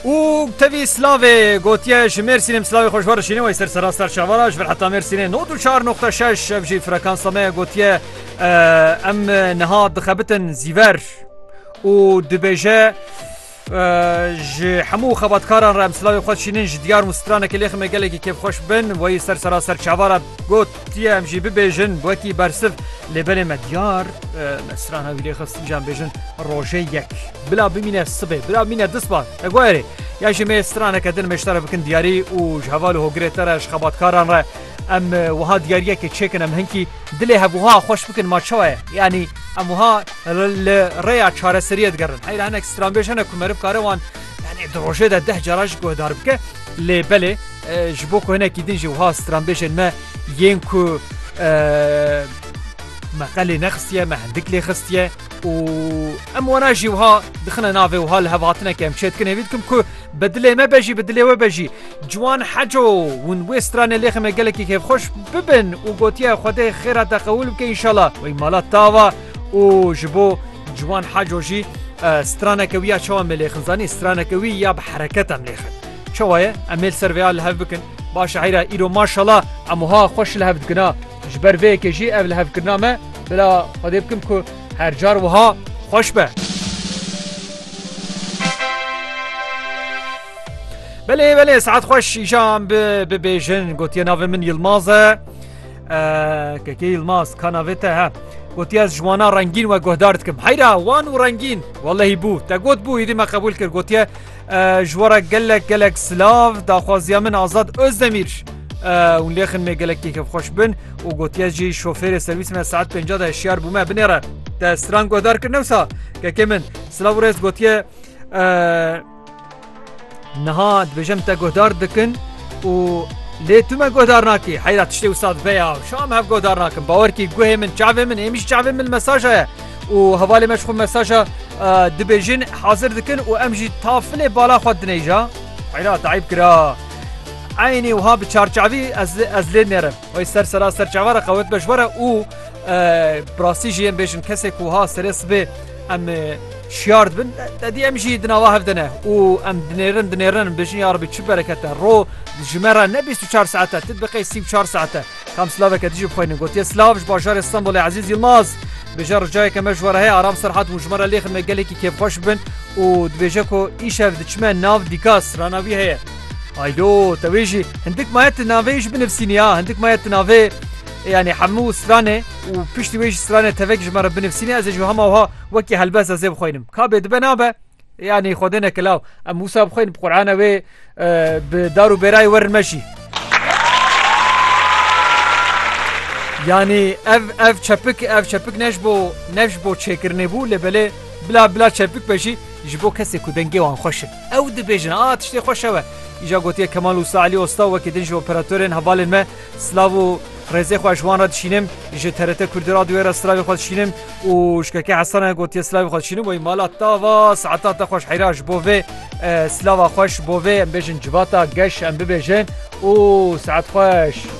û tevî silavê gotiye ji mêrsînê silavê xweş war şînê wey ser serasta şevara ji vir heta mêrsînê no du çar noxta şeş ev jî frekansa me gotiye em niha dixebitin zîver û dibêje ji hemû xebatkaran re em silavê xwe şînin ji diyar û stranekê lêxime gelekî kêfxweş bin wey ser serasta şevara got Tiye em jî bibêjin wekî bersiv lê belê me diyar me strana wî lê xist îjan bêjin rojê yek bila bimîne sibê bila bimîne disba te guherê ya jî me straneke din meşta re bikin diyarî û ji heval û hogirê te re ji xebatkaran re em wiha diyariyekê çêkin em hinkî dilê hevwiha xweş bikin ma çawa ye yanî em wiha li rêya çareseriyê digerin heyra hinek stranbêj hene ku me rib kare wan Yanî di rojê de deh cara jî guhdar bike lê belê ji bo ku hinekî din jî wiha stranbêjên me yên ku me qelê nexistiye me hindik lê xistiye û em wana jî wiha dixine navê wiha li hevhatineke em çêdikin hêvî dikim ku bi dilê me bejî bi dilê we bejî ciwan heco hûn wê stranê lêxê me gelekî kêfxweş bibin û gotiye xwedê xêra te qewil bike înşala wê mala tava û ji bo Ciwan Haco jî straneke wî ya çawa em ê lêxin zanî straneke wî ya bi hereket em lêxin. Çawa ye em ê li ser vê ya li hev bikin. Ba şaîra îro maşala em wiha xweş li hev dikin a. Ji ber vê yekê jî ev lihevkirina me bila xwedê bikim ku her car wiha xweş be. Belê belê saet xweş îşan bibêjin gotiye navê min Yilmaz e. Keke Yilmaz ka navê te he gotiye ez ji wana rengîn we guhdar dikim heyra wan û rengîn welehî bû te got bû êdî me qebûl kir gotiye ji were gelek gelek silav daxwaziya min azad Özdemîr hûn lêxin me gelek kêkev xweş bin û gotiye jî şofêrê serwîs me saet pênca de hişyar bû me binêre te stran guhdar kir newsa kekê min silav û rêz gotiye Niha dibêjim te guhdar dikin û lê tu me guhdar nakî. Heyra tiştê wisa dibe ya şa me hev guhdar nakin. Bawer kî guhê min çavê min êmî ji çavê min mesaja ye û hevalê me ji xwe mesaja dibêjin hazir dikin û em jî tafilê bala xwe dinêja. Heyra dayîb kira. Eynî wiha bi çarçavî ez lê nerim. Wê ser sera ser çava re qewet be ji were û bi rastî jî em bêjin kesê ku ha serê sibê em şiyar dibin te dî em jî dinava hev dine û em dinêrin dinêrin bêjin ya Rebî çi berekete ro ji me re ne bîst û çar saete tu biqê sî û çar saete kam silaveke dijî bixwînin gotiye silav ji bajarê Stenbolê Ezîz Yilmaz bêje ricayeke me ji were heye aram serhat û ji me re lêxin me gelekî kêfxweş bin û dibêje ku îşev diçime nav dîkas rana wî heye Aydo te wê jî hindik maye tu navê wî jî binivîsînî ya hindik maye tu navê yanî hemû stranê û piştî wê jî stranê tevek ji me re binivîsînî ez ê ji hema wiha wekî helbest ez ê bixwînim ka bê dibe nabe yanî xwedê neke law em wisa bixwînin bi qurana wê bi dar û bêrayê werin me jî yanî ev ev çepik ev çepik ne ji bo ne ji bo çêkirinê bû lê belê bila bila çepik be jî ji bo kesê ku dengê wan xweş e Ew dibêjin a tiştê xweş ew e. Îja gotiye Kemal Usta Elî Osta wekî din ji operatorên hevalên me silav û rêzê xwe ji wan re dişînim, ji TRT Kurdî Radyoyê re silavê xwe dişînim û ji KK Hesane gotiye silavê xwe dişînim wey mala tava saeta te xweş heyra ji bo vê silava xweş ji bo vê em bêjin civata geş em bibêjin û saet xweş.